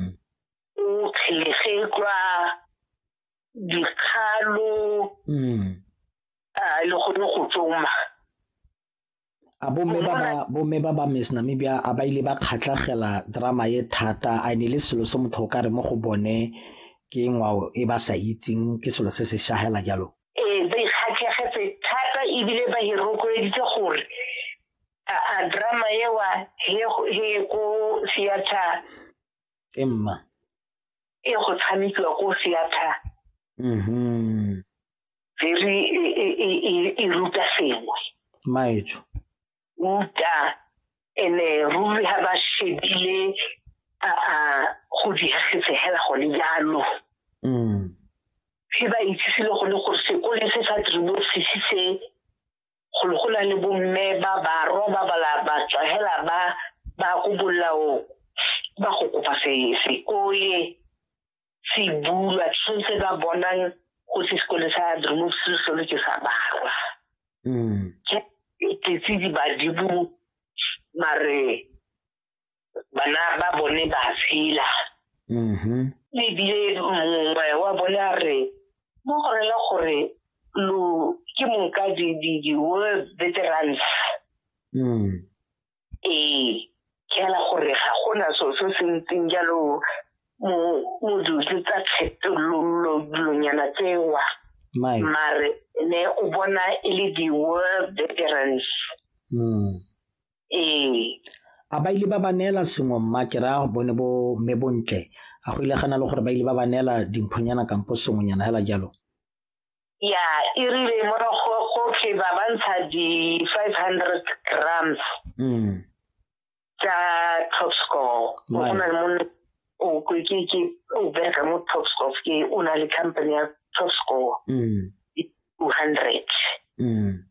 mm. o kgelegetlwa dikgalo mm. a le gone go tsoma a bomme ba ba miss namibia a ba ile ba kgatlhagela drama ye thata a ne le selo se motho o ka re mo go bone ke ngwao e ba sa itseng ke selo se se shagela jalo ee ba ikgatlhegetse thata ebile ba hirokweleditse gore a drama ewa he he ko theater emma e go tshamekiwa ko theater mhm very e ruta sengwe maetsho ruta ene ruri ha ba shebile a a go diegetse hela go le jalo mm he ba itsisile go le gore sekole se sa tribosisi se golo go na le bomme ba barwa ba bala ba tswa hela ba ba ko bolao ba go kopa se se kole se bulwa tshwanetse ba bonang go se sekole sa drumop se solo ke sa barwa mm ke tse di ba dibu mare bana ba bone ba tshela mm-hmm. ebile mongwe wa bone a re mo go rela gore lo ke mong ka di-world veterans mm. ee ke ala gore ga gona so se se ntseng jalo mo modutse tsa kgetololonyana tsewa mare ne o bona e le di-world veterans mm. ee a ba ile ba ba neela sengwe mma ke raya bone bo mme bontle a go ile gana le gore ba ile ba ba neela dimphonyana kampo sengwenyana fela jalo ya e rile morago gotlhe ba ba ntsha di-five hundred grams mm. tsa top score go na le mone o ke ke o bereka mo top score ke o na le company ya top score mm. two hundred mm.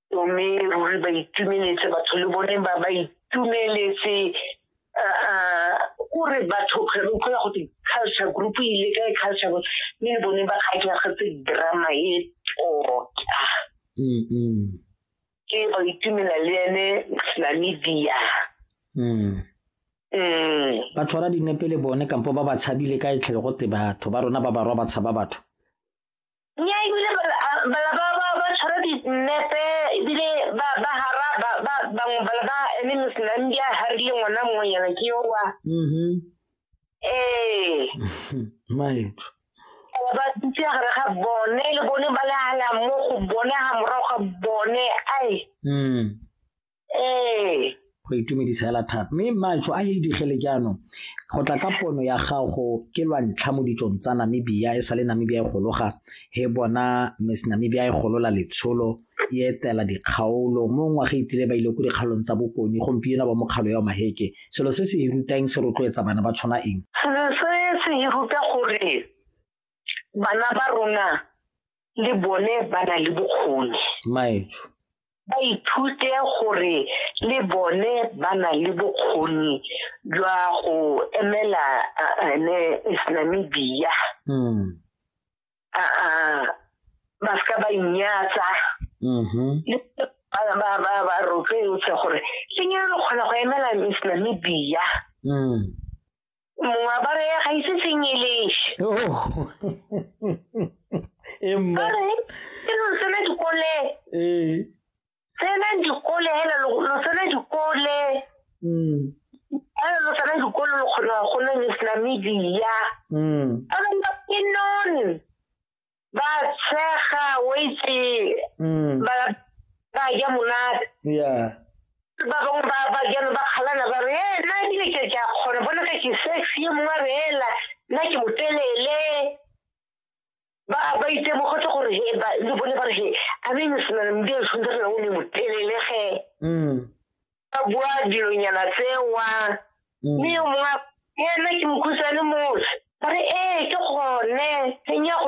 mme ruri ba itumeletse batho le bone ba ba itumeletse o re batho kgwere o kgwera gote culture group e ile ka e culture group mme le bone ba kgatlhagetse drama e tota ke ba itumela le ene namibia ba tshwara dinepe le bone kampo ba ba tshabile ka e tlhele gote batho ba rona ba barwa ba tshaba batho nya ebile bala ba ba ba tshwara dinepe ebile ba ba hara ba ba bangwe bala ba eme mosenang di a harile ngwana mongwe yana ke yo wa mm-hmm. ee maetso ba dutse gare ga bone le bone ba le hala mo go bone ga morago ga bone ai mm. ee go itumedisa hela thata mme matsho a e digele jaanong go tla ka pono ya gago ke lwa ntlha mo ditsong tsa namibia e sa le namibia e gologa he bona miss namibia e golola letsholo e etela dikgaolo mo ngwaga e tlile ba ile ko dikgaolong tsa bokone gompieno ba mokgalo ya maheke selo se se e rutang se rotloetsa bana ba tshwana eng selo se se e ruta gore bana ba rona le bone ba na le bokgoni maetsho ba ithute gore le bone ba na le bokgoni jwa go emela ene islamibia mm. ba se ka ba inyatsa mm-hmm. ba rotloetse gore le nyalo kgona go emela islamibia mm. moaparo ya ga ise sengelese emma ore ke lo tsena dikole ee tsena dikole hela lo lo tsena dikole mm hela lo tsena dikole lo kgona go nna le sena media mm ore nna ke non ba tshega o itse mm. ba ba ja monate yeah ba bangwe ba ba jalo ba kgalana ba re ee nna ebile ke ke a kgona bona ka ke sex ye mongwe a re ela nna ke motelele ba ba itemogetse gore he ba le bone ba re he a me mesena le mdi a tshwanetse re o ne motelele ge mm. ba bua dilonyana tsewa mm. mme yo mongwe ena ke mokhutshwane motse ba re ee ke gone e nya go